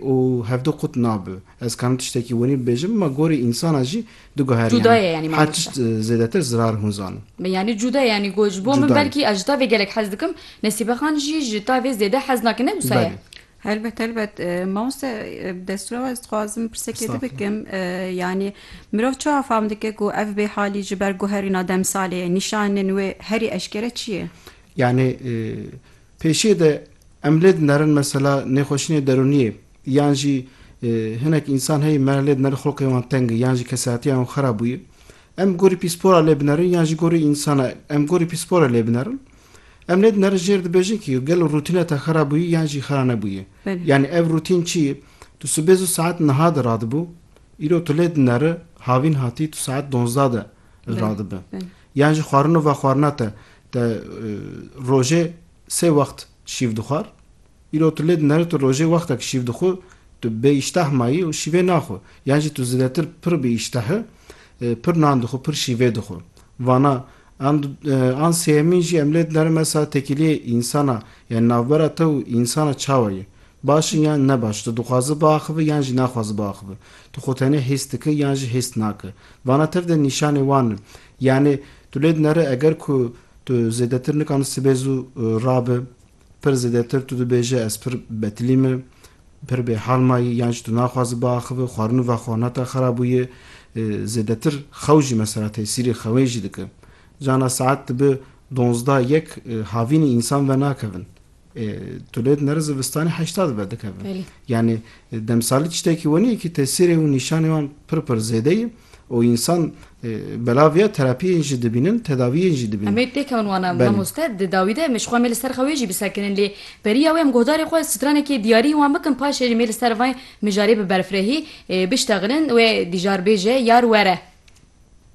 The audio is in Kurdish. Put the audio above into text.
Û hevdu qut nabe. Ez karim tiştekî winî bibêjim, ma gorî însana jî diguherî Cuda ye yanî her mamoste. tişt zêdetir zirar hûn zanin. Me yanî cuda ye yanî got ji bo min Cuda ye. belkî ez ji tavê gelek hez dikim, Nesîbe Xan jî ji tavê zêde hez nake ne wisa ye? Belê. Helbet helbet. Mamoste bi destûra ez dixwazim pirsekê te Estağfurullah. bikim, yanî mirov çawa fam dike ku ev bêhalî ji ber guherîna demsalê, nîşanên wê herî eşkere çi ye? Yanî Pêşiyê de em lê dinerin mesela nêxweşînê derûniyê yan jî hinek însan heye me lê dinerin xulqê wan teng e yan jî kesayetiya wan xera bûye. Em bi gorî pîspora lê binerin yan jî gorî însana em gorî pîspora lê binerin. Em lê dinerin jêr dibêjin kî gelo rûtîna te xera bûye yan jî xera nebûye. Yanî ev rûtîn çi ye? Tu sibê zû saet niha de radibû, îro tu lê dineri havîn hatî tu saet donzda de radibi. Yan jî xwarino vexwarina te Te rojê sê wext şîv dixwar? Îro tu lê din herî tu rojê wextek şîv dixwi, tu bê îştah mayî û şîvê naxwi. Yan jî tu zêdetir pir bi îştah î, pir nan dixwi, pir şîvê dixwi. Vana an an sêyemîn jî em lê din herin mesela tekîliyê însana yanî navbera te û însana çawa ye? Baş in yan ne baş? Tu dixwazi biaxivi yan jî naxwazi biaxivi? Tu xwe tenê hês diki yan jî hês naki? Vana tev de nîşanê wan in. Yanî tu lê dinere eger ku tu zêdetir nikan sibê zû rabi, pir zêdetir tu dibêje ez pir betilî me, pir bêhal mayî yan jî tu naxwazî biaxive, xwarin û vexwarina te xera bûye, zêdetir xew jî mesela tesîrê xewê jî dike. Cana saet dibe donzdeh yek havînî însan venakevin. Tu lê dinere zivistanê heşta dibe dikeve. Yanî demsalî tiştekî wenî ye kî tesîrê û nîşanê wan pir pir zêde ye û însan belav ya terapiyên jî dibînin, tedawiyên jî dibînin. Em ê pêkevin wana mamoste di dawî de em ê ji xwe mê li ser xwe wê jî bisekinin lê beriya wê em guhdarê xwe stranekê diyarî wan bikin paşê jî mê li ser vay mijarê biberfirehî biştexinin wê dîjarbêje yar were